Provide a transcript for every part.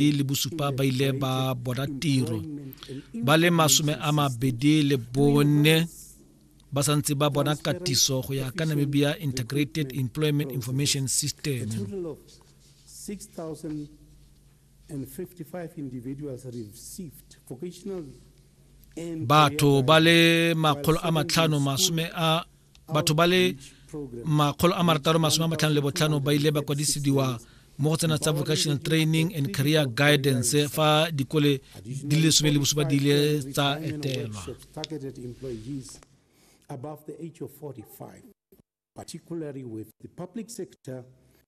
e le bosupa ba ile ba bona tiro ba le masome a mabedi le bone ba santse ba bona katiso go ya ka namibia integrated employment information system batho ba le makgolo a matlhano masome a batho ba le makgolo a marataro masome a matlhano le botlhano ba ile ba kwadisidiwa mo go tsena tsa vocational training and career guidance fa dikole di le some le bosupa di ile tsa etelwa above the age of 45, particularly with the public sector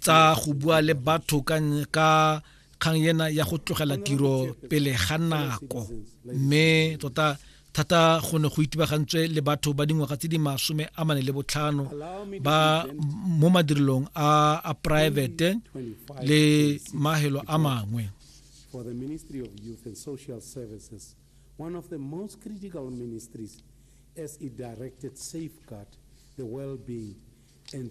tsa go bua le batho ka kgang ena ya go tlogela tiro pele ga nako mme tota thata go ne go itibagantswe le batho ba dingwaga tse di masome a mane le botlhano ba mo madirelong a a private le mahelo a mangwe for the Ministry of Youth and Social Services, one of the most critical ministries as it directed safeguard the well-being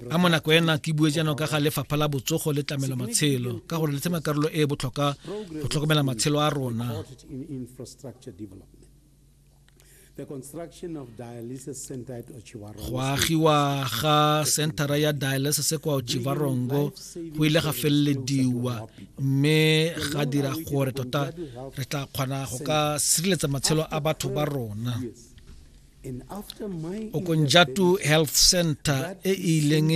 a mo nako ena ke bue jaanong ka ga lefapha la botsogo le tlamelo matshelo ka gore le tsema karolo e e botlhokwa go tlhokomela matshelo a rona go agiwa ga centera ya dialysis kwa ochivarongo go ile ga felelediwa mme ga dira gore tota re tla kgona go ka sireletsa matshelo a batho ba rona yes. okonjatu health center e e ileng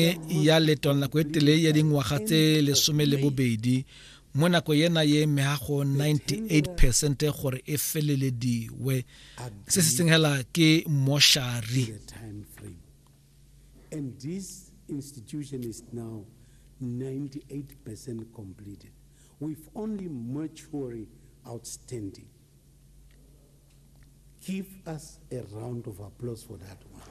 ya letwana nako e tele ya dingwaga tse lesome le bobedi mo nako yena ye mehago 98 percent gore e felelediwe se se seng hela ke moshari and this institution is now 98 percent completed with only mortuary outstanding Give us a round of applause for that one.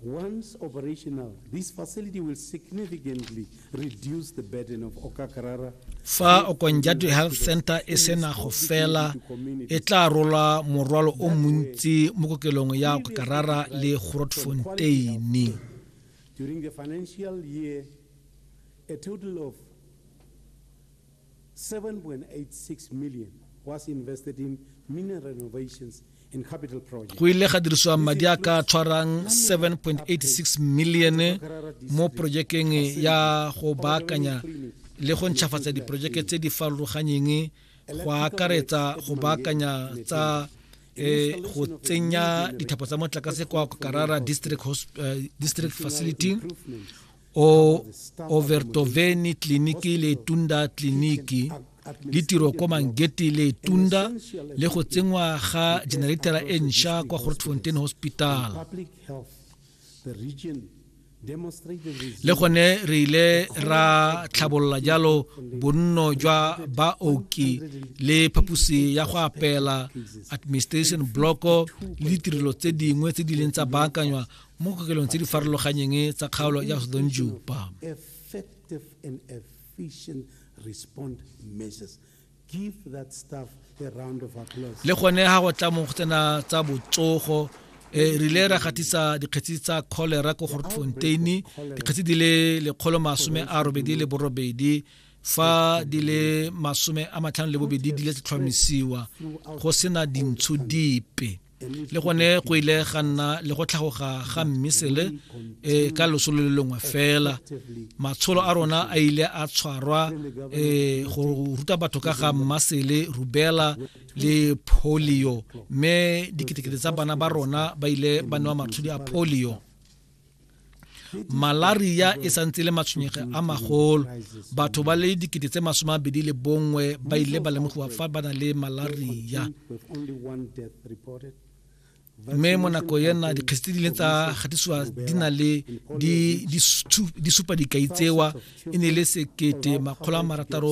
Once operational, this facility will significantly reduce the burden of Okakarara fa okonjadu health center e sena go fela e tla rola morwalo o montsi mo kokelong ya okakarara le grotfonteine A total of 7.86 million was invested in mineral renovations and capital projects. go ile ga dirisiwa madi a ka tshwarang 7.86 million mo projekeng ya go baakanya le go ntšhafatsa diprojeke tse di farologanyeng go akaretsa go baakanya tsa eh, go tsenya dithapo tsa motlakase kwa karara district, eh, district facility o overtoveni tleliniki le tunda tleliniki le tiro kwa mangete le tunda le go tsenngwa ga generatara e ntšha kwa grotfontain hospital le gone re ile ra tlhabolola jalo bonno jwa baoki le phaposi ya go apela administration block le ditirelo tse dingwe tse di leng tsa baakanywa mo kokelong tse di farologanyeng tsa kgaolo ya sodonjupa le gone ga go tla mo go tsena tsa botsogo e rile ra gatisa dikgetsi tsa cholera ko gortfontein dikgetsi di le lekgolo masome a robedi le borobedi fa di le masome a matlhano le bobedi di le tlhomisiwa go sena dintsho dipe le gone go ile ga nna le go tlhagoga ga mmisele e ka losolo le lengwe fela matsholo a rona a ile a tshwarwa e go ruta batho ka ga mmasele rubela le polio mme diketekete tsa bana ba rona ba ile ba newa matshodi a polio malaria e santse le matshwenyege a magolo batho ba le dikete tse masome a bedi le bongwe ba ile ba lemogiwa fa ba na le malaria mme mo nako ena dikgetse tse di leng tsa gatisiwa di na le di supa dikai tsewa e ne e le sekete makgolo a marataro